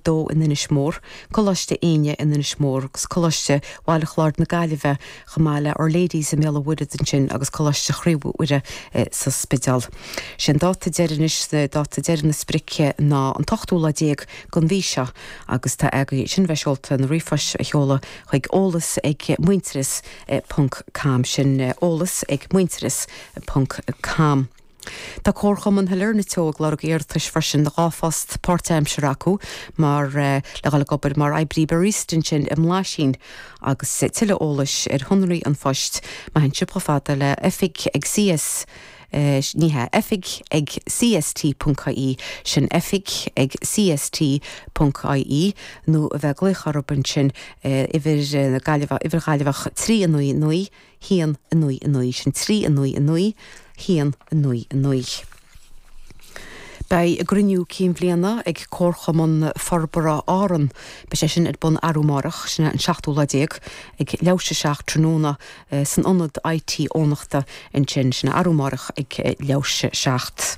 dó in Inis Mór, Coláiste Éinne in Inis Mór agus Coláiste Bhaile Chláir na Gaillimhe, chomh maith le Our Lady's i mBéal an Mhuirthead ansin agus Coláiste Chroí Mhuire sa Spideál. Sé an dáta deiridh anois, dáta deiridh na sprice ná an t-ochtú lá déag den mhí seo agus tá agaibh sin bheith seolta na ríomhphoist a sheoladh chuig, eolas ag muintearas ponc com, sin eolas ag muintearas ponc com. Tá Comharchumann Shailearna Teo ag lorg iarratais freisin do dhá phost páirtaimseartha acu mar, le dhul ag obair mar oibrí barista ansin i mBlaisín. Agus tuilleadh eolais ar shonraí an phoist, má théann sibh chomh fada le oifig ag CS, ní hea, oifig ag CST.ie, sin oifig ag CST.ie, nó a bheith ag glaoch orthu ansin ar uimhir na Gaillimhe, uimhir Ghaillimheach 399. haon, a naoi, a naoi, sin trí, a naoi, a naoi, haon, a naoi, a naoi. Beidh a gcruinniú cinn bhliana ag Comharchumann Forbartha Árann, beidh sé sin ar bun arú amárach, sin an seachtú lá déag, ag leathuair tar éis a seacht tráthnóna san ionad IT Eoghanachta ansin, sin arú amárach ag leathuair tar éis a seacht.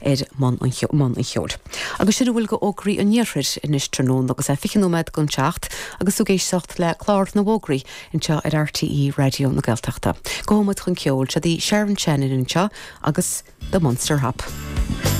i mbun an cheoil. Agus sin a bhfuil go fhógraí an Iarthair anois tráthnóna agus é fiche nóiméad don seacht agus tú ag éisteacht le clár na bhfógraí anseo ar RTÉ Raidió na Gaeltachta. Gabhfaidh muid chun ceoil. Seod í Sharon Shannon anseo agus The Munster Hop.